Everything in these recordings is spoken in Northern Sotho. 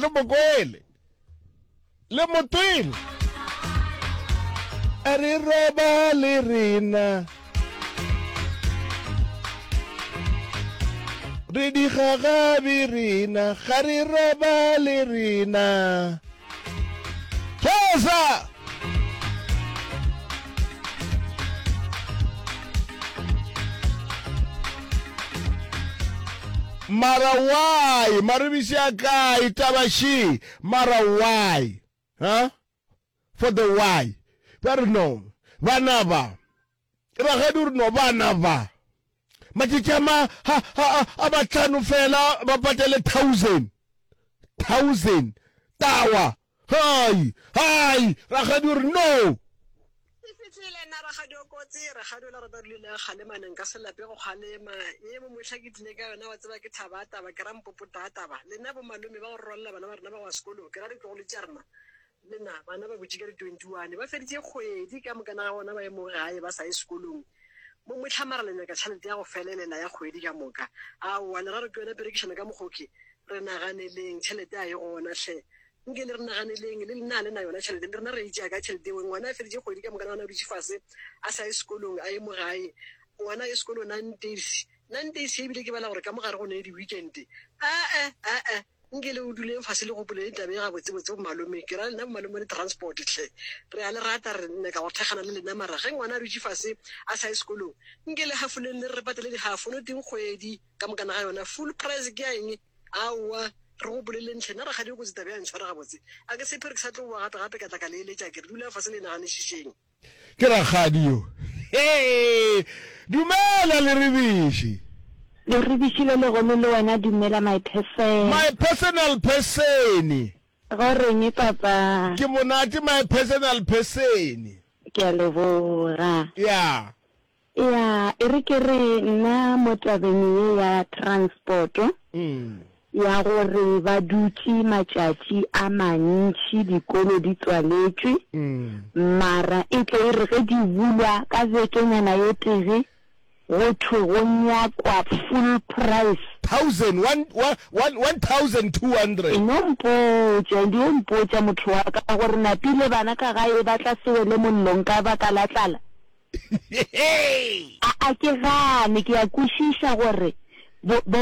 le mokwele le motwele a re roba le rena re digagabi rena ga re roba le rena thosa mara why maribiši a kae taba she mara why huh? for the why ba re no bana ba Rakgadi o re no bana ba matšatši a ma ha, ha, ha, a batlhano fela ba patele thousand thousand tawa hai hai rakgadi o re no E fitlhile nna rakgadi o kotsi rakgadi o la rata dule le kgale mane nka se lape go kgalema e mo mohla ke tlile ka yona wa tseba ke thaba taba ke ra mpopo taba le nna bo malome ba go rwalela bana ba rena ba wa sekolo ke ra ditlogolo tša rena Mna, Bana ba botši ka di 21 ba feditše kgwedi ka mokana ga bona ba emoge gae ba sa ye sekolong. Mo Mehla, Mara le nyaka tšhalete ya go felelela ya kgwedi ka moka? Aowa, le ga re ke yona perekišano ka mokgoke. Re naganeleng, tšhalete a e gona hle. Nke le re naganeleng, le lena ga le na yona tšhalete, le rena re e tšea kae tšhalete yeo? Ngwana a feditše kgwedi ka mokana gona a dutše fase a sa ye sekolong, a emo gae. Ngwana a ye sekolong, Nantes. Nantes, Ebile ke bala gore ka mo gare go ne le di-weekend. A-e, a-e. Nkele o duleng fase le gopoleng taba ye gabotsebotse bomalome, ke ra lena bomalome le transport hle, re a le rata, re nyaka go thekgana le lena mara ge ngwana a dutše fase a sa ye sekolong, nke le hafoleng le re patele dihafo no teng kgwedi ka mokana ga yona, full price ke ya eng? Aowa re gopoleleng hle, nna rakgadi o kotsi taba ya ntshwara gabotse, a ke tshepe re ke sa tlo boa gape gape ka tla ka le eletša ke re dulang fase le e naganišišeng. Ke rakgadi yo. Hee! Dumela, Leribiši! Leribiši le legono le wena dumela, my person. My personal person-e. Go reng, papa? Ke monate, my personal person-e. Ke a leboga. Ya. Ea, e re ke re nna mo tabeng ye ya transport-o, ya gore ba dutše matšatši a mantši dikolo di tswaletšwe, mara e tle e re ge di bulwa ka bekenyana e tee go thwe go nyakwa full price. Thousand, one, one, one thousand two hundred. E no mpotša, e dio mpotša motho wa ka gore napile bana ka gae ba tla se wele mollong ka baka la tlala? A, a ke gane, ke a kwešiša gore bo, bo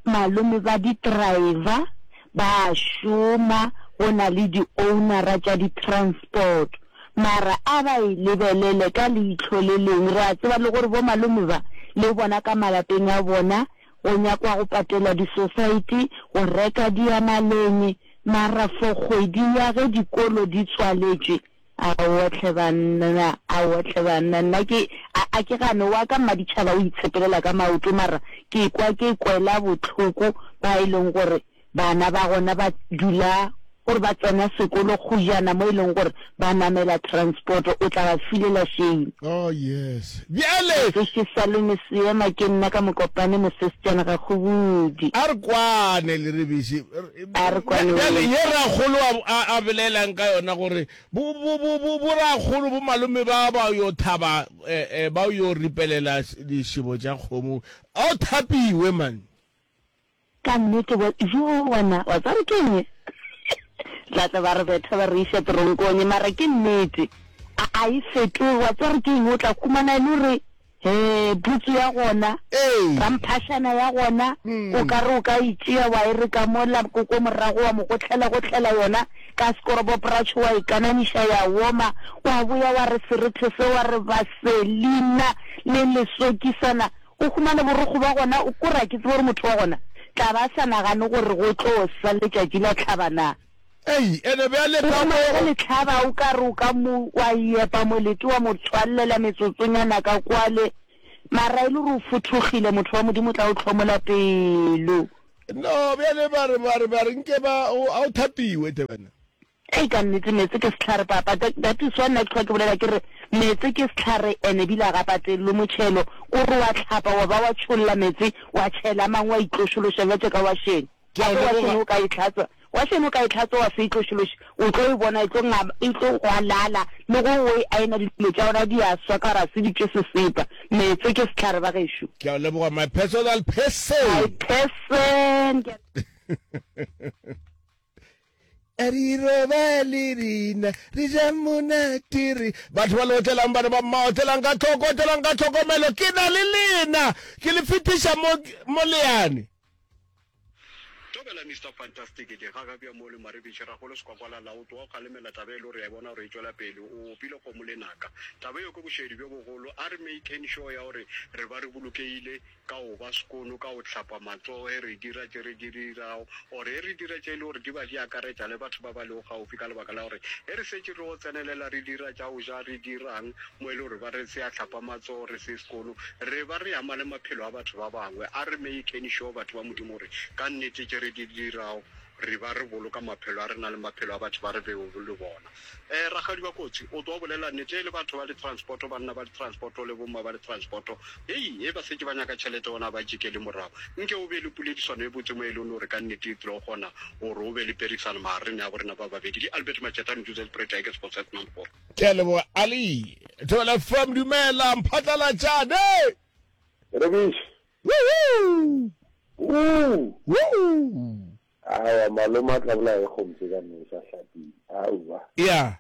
malome ba di-driver ba a šoma, go na le di-ownera tša di-transport. Mara a ba e lebelele ka leihlo le leng. Re a tseba le gore bo malome ba, le bona ka malapeng a bona, go nyakwa go patela di-society, go reka diamaleng, mara for kgwedi ya ge dikolo di tswaletšwe, A wohle banna, a wohle banna, nna ke, a, a ke gane wa ka Mmaditšhaba o itshepelela ka maoto mara ke ekwa ke kwela bohloko ba e leng gore bana ba gona ba dula gore ba tsena sekolo kgojana mo e leng gore ba namela transport o tla ba filela shame. Oh yes. Bjale. Se ke sa lone seema ke nna ka Mokopane Mosestšana Gakgobudi. A re kwane Lerebese. a re kwane o Bjale ye rakgolo a, a, a belaelang ka yona gore bo, bo, bo, bo, bo rakgolo, bo malome ba ba yo thaba, eh, eh, ba yo ripelela dišebo tša kgomo. A o thapiwe, man. Ka nnete, wa, yoo, wa na, wa tseba re ke eng? Tla tla ba re betha ba re iša teronkong, mara ke nnete. A, a e fetoge, wa tseba re ke eng? O tla humana e le gore Hee, putsu ya gona, Ee. pamphašana ya gona, o ka re o ka e tšea wa e re ka mola ko ko morago wa mo gotlhela-gotlhela yona ka sekoroboporatšhe wa e kananiša ya woma, wa boya wa re serethe se wa re vaselina le lesokisana, o humane borokgo ba gona, o ko re a ke tsebe gore motho wa gona tla ba a sa nagane gore go tlo sa letšatši la tlhaba na. Ei, ene bjale ka mo. Ge le hlaba o ka re o ka mo wa epa molete wa mo tswallela metsotsonyana ka kwale, mara e le gore o fothogile, motho wa Modimo o tla o hlomola pelo. No, bjale ba re, ba re, ba re nke ba, o, a o thapiwe tle wena. Ei, ka nnete meetse ke sehlare, papa. That, that is why nna ke hlwa ke bolela ke re, meetse ke sehlare ene ebile a ga patelelwe motšhelo. Ko re wa hlapa wa ba wa tšholla meetse, wa tšhela a mangwe wa itlošološa bjatše ka wašeng. Ke a leboga. Gape wa šeno o ka e tlhatswa, wa šeno o ka e tlhatswa wa se e tlošološe, o tlo e bona e tlo ngaba, e tlo gwalala, le go o e ayena dilo tša yona di a swa ka gore ga se di tše sesepa. Meetse ke sehlare ba gešo. Ke a leboga my personal person. My person. Ke a. Re roba le rena re ja monate re batho ba le otlelang bana ba mma otlelang ka tlhoko otlelang ka tlhokomelo ke na le lena ke le fetiša mo mo leane Dumela Mister Fantastic, ke gaga bja mo le Maribitše, Ragolo Sekwakwala Laut wa go kgalemela taba ye le gore ya e bona gore e tšwela pele. O opile kgomo le naka. Taba yeo ke bošedi bjo bogolo. A re make'n sure ya gore re ba re bolokegile ka go ba sekono, ka go hlapa matsogo ge re dira tše re di dirago, or ge re dira tše e le gore di ba di akaretša le batho ba ba lego gaufi, ka lebaka la gore ge re šetše re yo tsenelela re dira tša go ja, re dira'ng mo e le gore ba re se a hlapa matsogo, re se sekono, re ba re ama le maphelo a batho ba bangwe. A re meyekeni šo, batho ba Modimo, gore ka nnete tše re di dirago re ba re boloka maphelo a rena le maphelo a batho ba re bego le bona. Eh, rakgadi wa kotsi, o tlo bolela nnete e le batho ba litransporto, banna ba litransporto le bomma ba litransporto. Hei, he ba šetše ba nyaka tšhelete gona ga ba tšikele morago. Nke o be le poledišano e botse mo e leng gore ka nnete e tlo kgona gore o be le perekisano magareng a borena ba babedi. Ke Albert Matšeta, Mduzelprojekes, Boset Number 4. ke a leboga ali thobela fm dumela mphatlalatšane rebiše awa maloma tla bola e kgontse ka nne sa hlapile aowa ya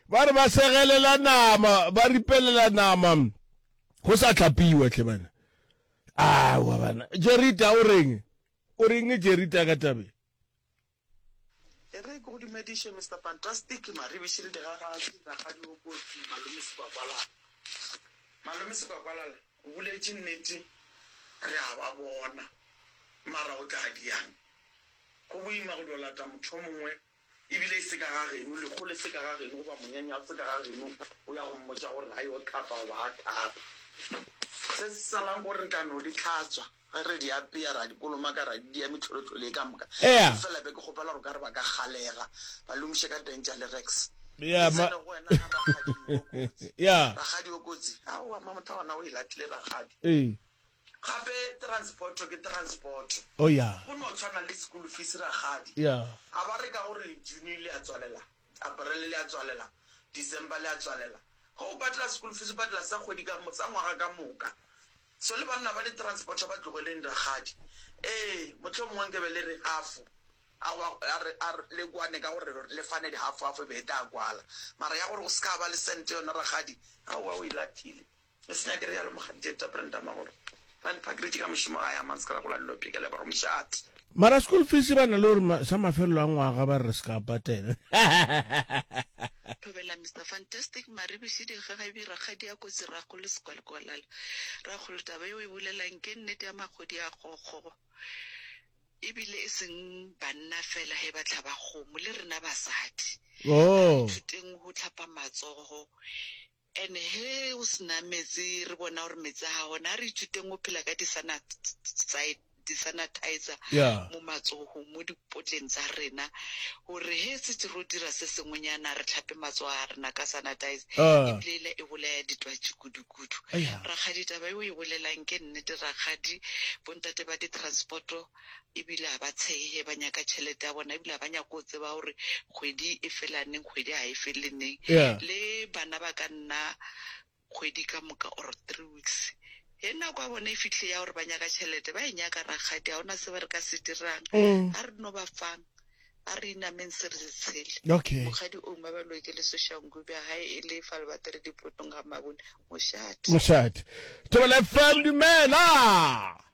ba re ba segelela nama ba ripelela nama go sa tlhapiwa tle bana awa bana jerita o reng o reng jerita ka tabe E re ke go dumediše Mister Fantastic, Maribiši le Digagasi, Rakgadi o kotsi, Malome Sekwakwalala. Malome Sekwakwalala, o boletše nnete, re a ba bona, mara go tla diang? Go boima go yo lata motho yo mongwe, ebile e se ka ga geno, lehu le se ka ga geno, goba monyanya o se ka ga geno, o ya go mmotša gore a yo hlapa goba a hlape. Se se salang ke gore re tla no di hlatswa. Ge re di apea, re a di kolomaka, re a di dia mehlolohlolo ye ka moka. Ea. Efela be ke kgopela gore ka re ba ka kgalega, ba lomiše ka teng tša Lyrex. Ea, Ke ma. tsene go wena, ga Rakgadi yo o kotsi. Ea. Rakgadi o kotsi? Aowa, Mamotha gona o e latlile Rakgadi. Ee. Gape transport ke transport. O ya. Go no tshwana le school fees Rakgadi. Ea. A ba re ka gore June le a tswalela, April le a tswalela, December le a tswalela. Ge o patela school fees o patela sa kgwedi ka, sa ngwaga ka moka. So le banna ba di-transporter ba tlogeleng rakgadi. Ee, mohlomongwe nke be le re gafo. Aowa, a re, a re le kwane ka gore le fane dihafo-hafo e be e tla kwala. Mara ya gore go se ka ba le cent yona rakgadi, aowa o e lathile. Le se nyake re yalo, Mokgadi Jeta, Brenda Magoro. Randpark re tšee ka mošomo gae a mang, se ke ra gola le lo phekela, e ba go mošate. Mara school fees ba na le gore sa mafelelo a ngwaga ba re se ka patela. Thobela Mister Fantastic Maribishi Dikgagabi Rakgadi ya Kotsi Rakgolo Sekwalekwalala Rakgolo taba e o e bolelang ke nnete ya magodi a kgokgo ebile e seng banna fela he ba tlhaba kgomo le rena basadi oh. thuteng ho tlhapa matsogo And he go se na meetse re bona gore meetse ga gona. A re ithuteng go phela ka disanatsaete di sanitizer yeah. mo matsogong mo dipotleng tsa rena gore he setse ro dira se sengwenyana re tlhape matsogo a rena ka sanitizer ah. ebilela e bolaya ditwatši kudukudu rakgadi taba eo e bolelang ke nnete rakgadi bontate ba di-transporto ebile ga ba tshege, ba nyaka tšhelete ya bona, ebile ga ba nyako go tseba gore kgwedi e fela neng, kgwedi ga e fele neng. Yeah. Le bana ba ka nna kgwedi ka moka or three weeks. Ge nako ya bona e fihle ya gore ba nyaka tšhelete, ba e nyaka rakgadi, ga ona se ba re ka se dirang. Mm. A re no ba fang, a re inameng se re se tshele. Okay. Mokgadi o ngwe ba loke le soshangu bja gae e le fa le batere dipotong ga mabone. Mošate. Mošate. Thobela FM, dumela!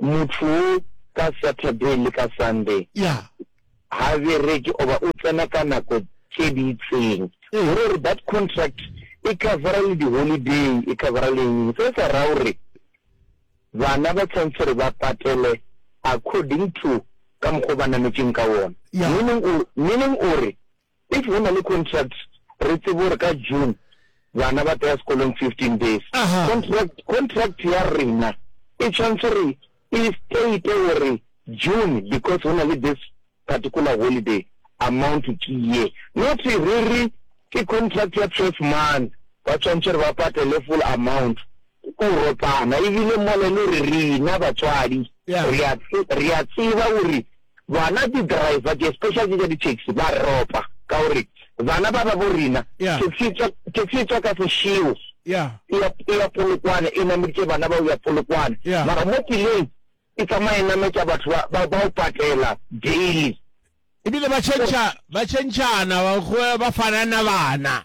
Motho wo ka Saturday le ka Sunday ha bereke oba o tsena ka nako tše di itseng. Go ra gore that contract e covera le di holiday, e covera le eng-eng. Se sa ra gore bana ba tshwanetse gore ba patele according to ka mokgwa o ba nametšeng ka wona. Meaning, meaning o re If go na le contract re tsebe gore ka June bana ba tla ya sekolong fifteen days. Contract, contract ya rena e tshwanetse re e state gore June because go na le this particular holiday amount to ke ye. Not re re ke contract ya twelve months ba tshwanetse gore ba patele full amount. Ke go ropana ebile mola e le gore rena batswadi re a tseba gore Bona di driver tše special tše tša di taxi ba re ropa ka gore bana ba ba bo rena taxi tswa taxi tswa ka sešeo ya ya ya polokwane e nameditše bana ba ya polokwane mara mo tseleng e tsamaye nametša batho ba ba o patela daily e bile ba change ba change ana ba ba fanana bana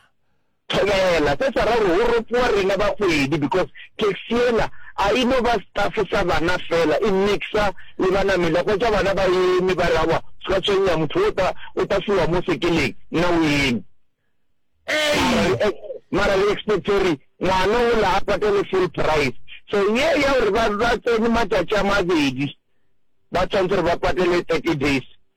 Thobela, se sa ra gore go ropoa rena bagwedi because taxi yela a e no ba staff sa bana fela, e mixa le banamedi. A hwetša bana ba eme ba re aowa ska tshwenya motho o ta o ta fiwa mo sekeleng nna o eme. Mara re ex mara re expect gore ngwana ola a patale full price. So ye ya gore ba ba tsene matšatši a mabedi ba tshwanetse gore ba patale thirty days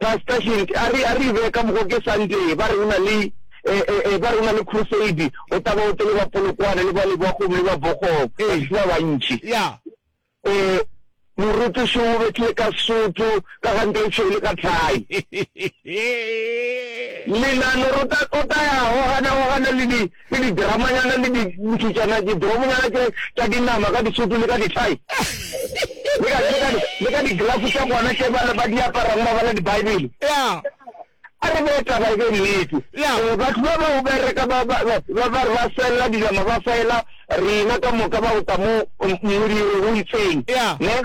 Pastor Shinty a re a re e beye ka mokgo ke Sunday ba re o na le e e e ba re o na le crusade o tla ba o tle le ba Polokwane le ba Leboakgong le ba Bokgong ba se ba bantši. Yeah. E morutiši o bethile ka Sotho ka gante e tšhweu le ka thai. Lenano re o tla o tla ya gogana gogana le di. Le didrama-nyana le dipušetšana, didromonyana tše tša dinama ka disutu le ka dithai, le ka, le ka, le ka diglafo tša bona tše ba, ba di aparago ba bala Dibaebele. Ya. A re bee taba e be nnete. Ya. Ee, batho ba bao ba reka, ba, ba, ba, ba, ba re ba sella dinama ba fayela rena ka moka, ba go tla mo, mo, mo diireng o itseng. Ya. Ne?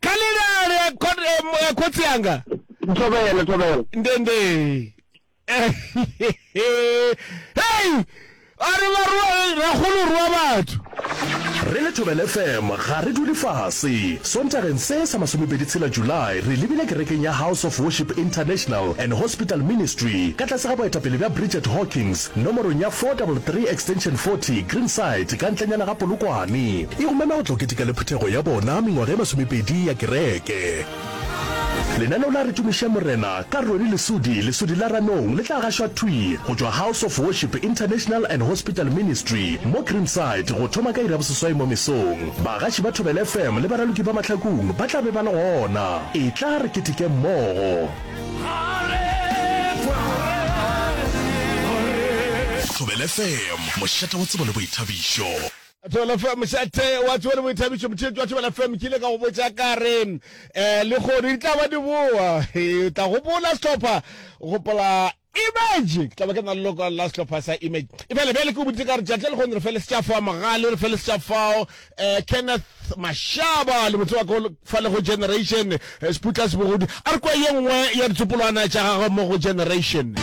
Kalelare ya ko- eh, mo- ya kotsi yanga Ntobele, Ntobele. ndende hei a re ba rua ragolo rua batho re le thobel fm ga re dule fase sontageng se sa masomepedi tshela july re lebile kerekeng ya house of worship international and hospital ministry ka tlase ga boetapele bja bridget hawkings Nomorong ya 433 extension 40, Greenside, ka ntlenyana ga Polokwane. E romelwa go tlo keteka le phuthego ya bona mengwaga e masomepedi ya kereke. Lenaneo la Re Tumišeng Morena ka Roni Lesudi, Lesudi la Ranong, le tla gašwa thwi go tšwa House of Worship International and Hospital Ministry mo Greenside go thoma ka iri ya boseswai mo mesong. Bagaši ba Thobela FM le baraloki ba Mahlakung ba tla be ba le gona. Etla re ketekeng mmogo. Thobela FM, mošate wa tsebo le boithabišo. Thobela FM, mošate wa tsebo le boithabišo. Motheetši wa Thobela FM ke ile ka go botša ka re um lehono di tla ba di boa, o tla gopola sehlopha, gopola Image, Ke tla ba ke na le lokwalo la sehlopha sa Image. Ebjale, bjale ke go boditše ka re tšatši le lekgone re feletse tša fao, Mogale re feletse tša fao, um Kenneth Mashaba le motse wa ka o fa le go Generation, um Seputla Sebogodi. A re kwa ye nngwe ya ditsopolwana tša gagwe mo go Generation.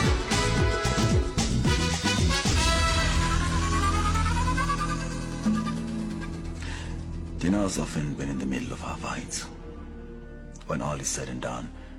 Diners often been in the middle of our fights. When all is said and done,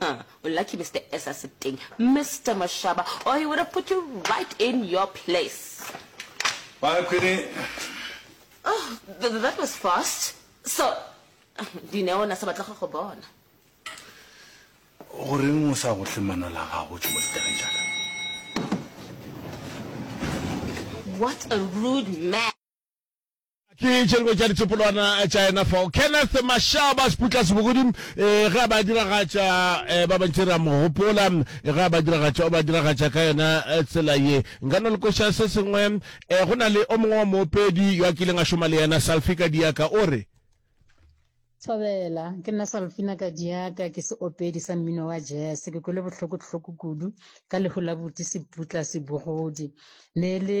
Huh, u lucky Mister S a se teng, Mister Mashaba or he would have put you right in your place. Bye Queenie. Oh, th that was fast. So, Dineo na sa batla go go bona. Goreng o sa go tle mano la gago tšo mo ditabeng tša ka? What a rude man. Ke tše dingwe tša ditsopolwana tša yena fao. Kenneth Mashaba, Seputla Sebogodi, e, ge a ba diragatša, e, ba bantši re a mo gopola, e, ge a ba diragatša, o ba diragatša ka yona e, tsela ye. Nka no le kweša se sengwe, e, go na le o mongwe wa moopedi yo a kileng a šoma le yena, Salfi Kadiaka, o re. Thobela, ke nna Salfina Kadiaka, ke seopedi sa mmino wa jese. Ke kwele bohloko-hloko kudu ka lehu la buti Seputla Sebogodi. Ne e le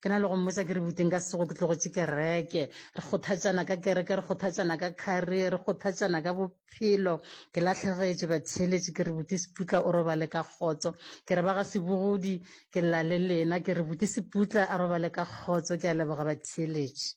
Ke na le go mmotsa ke re bute nka se tsogo ke tlogetše kereke. Re kgothatšana ka kereke, re kgothatšana ka career, re kgothatšana ka bophelo. Ke lahlegetše batheeletše ke re bute Seputla o robale ka kgotso. Ke re ba ga Sebogodi ke lla le lena ke re bute Seputla a robale ka kgotso ke a leboga batheeletše.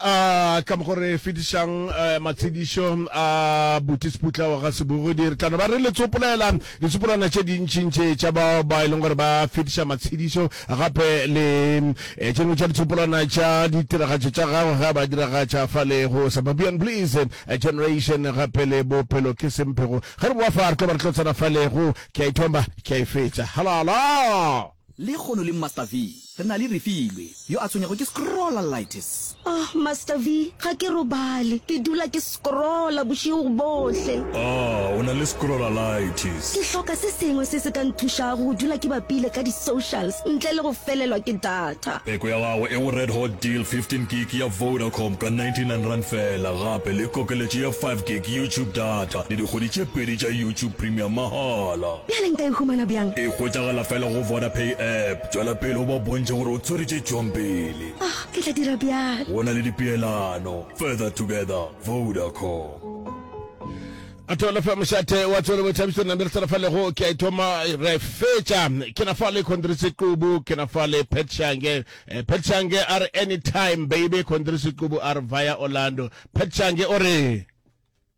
A ka mo go re fetišang eh, matshedišo a Buti Seputla wa ga Sebogodi. Re tlano ba re le tsopolela ditsopolwana tše dintšintši tša bao ba e leng gore ba fetiša matshedišo gape le eh, tše dingwe tša ditsopolwana tša ditiragatšo tša gagwe ga ba diragatša fa le go Suburban Blues eh, Generation gape le Bophelo ke Semphego. Ge re boa fa re tlo ba re tlo tsena fa le go ke a ithomba ke a e fetša. Halala! Lehono le Master V re na le Refilwe yo a tshwenyego ke scrollalitis. Ohh Master V, ga ke robale, ke dula ke scrolla bošego bohle. Ahh o na le scrollalitis. Ke hloka se sengwe se se ka nthušago go dula ke bapile ka di socials ntle le go felelwa ke data. Peko ya gago e go Red Hot Deal 15 gig ya Vodacom ka 99 rand fela gape le kokeletšo ya 5 gig YouTube data le dikgwedi tše pedi tša YouTube Premium mahala. Bjale nka e humana bjang? E hwetšagala fela go Vodapay app. Tšwela pele o ba bontšhe gore o tshwere tše tšwang pele. Oh, ke tla dira bjalo. Go na le dipeelano. Further together, Vodacom. A thola fa mošate wa tsone bo thabiso na mere fa lego ke a ithoma re fetša ke na fa le khondrisi qubu ke na fa le petshange eh, petshange a re anytime baby khondrisi qubu a re via orlando petshange o re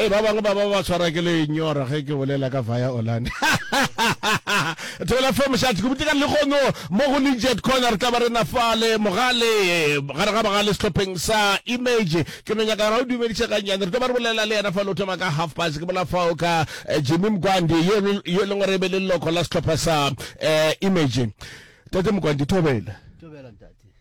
e ba bangwe ba ba ba tshwara ke lenyora ge ke bolela ka via olane thobela fe mošati go butekane le kgono mo go lejet corner tla ba re nafale mogale gare ga bagale sehlopheng sa image ke no nyaka ra o dumediše gannyane re tlo ba re bolela le yena fa lo thoma ka half past ke bola fao ka eh, jimmy mkwandi yo e leng gore e be le leloko la sehlopha sa eh, image tate mokwandi thobela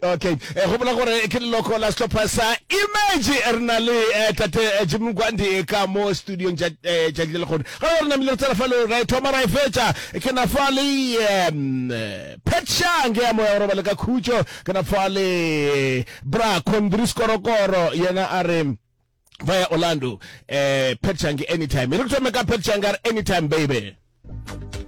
Okay. Eh, gopola gore ke leloko la sehlopha sa Image re na le eh, tate eh, Jim Nkwandi eh, ka mo studiong tša eh, tšatši le lekgono. Ga re namile re tsela fa le ra e thoma ra e fetša. Ke na fa le em, eh, Phetšang ya moya gore ba le ka khutšo. Ke na fa le eh, Bra Kondri Skorokoro yena a re via Orlando eh Phetšang anytime. Re thome ka Phetšang anytime baby.